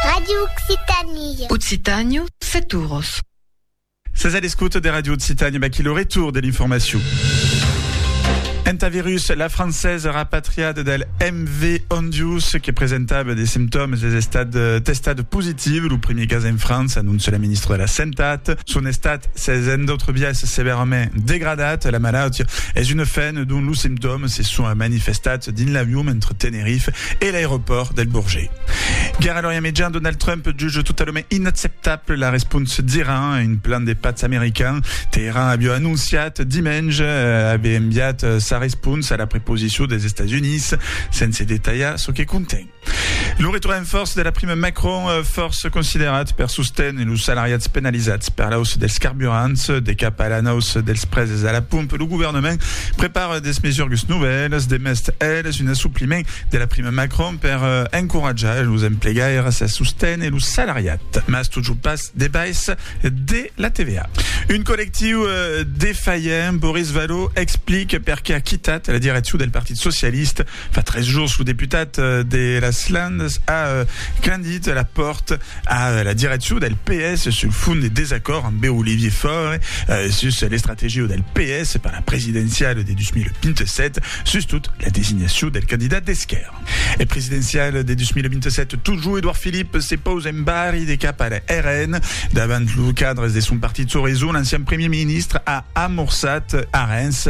Radio Occitanie. Occitània, set oros. Sètz a l'escota de Radio Occitània, vaquí lo retour de l'informacion. Entà virus, la francesa rapatriada del MV Ondius que presentava de simptòmes es estat eh, testat positiu. Lo primer cas en França, anonça la ministra de la Santat. Son estat s'es en d'autres biais severament degradat. La malaut es una fen dont los simptòmes se son manifestats dins l'avion entre Tenerife e l'aeropòrt del Bourget. Gara l'òria mejan, Donald Trump juge totalament inacceptable la respons d'Iran a un plan de patz american. Teheran aviá anonciat dimenge aver enviat sa respons a la preposicion dels Estats Units, sense detalhar çò que conten. Lo retorn en fòrça de la prima Macron, fòrça considerat per sosténer los salariats penalizats per l'auça dels carburants, de cap a l'anauça dels preses a la pompa, lo governament prepara de mesurgas novèlas, demest elas un assopliment de la prima Macron per encoratjar los emplegaires a sosténer lo salariat, mas totjorn pas de baissa de la TVA. Un collectiu defalhant, Boris Vallaud explica perqué a quitat la direccion del Partit Socialista. Fa tres jours, lo deputat de las Landes a clandit la pòrta a la direccion del PS sul fond de desacòrd ambe Olivier Faure sus l'estrategia del PS per la presidenciala de 2027, sustot la designacion del candidat d'esquèrra. E presidenciala de 2027, totjor Edouard Philippe se pausa en barri de cap al RN. Davant los cadres de son partit Soreison, l'ancian premier ministre a amorçat arenhs.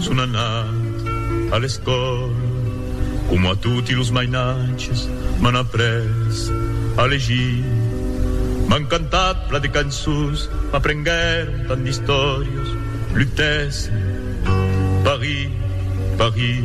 Son anat a l'escòla, coma toti los mainatges, m'an après a legir, m'an cantat pla de cançons, m'aprenguèron tant d'istòrias, lutèssen, Paris, Paris.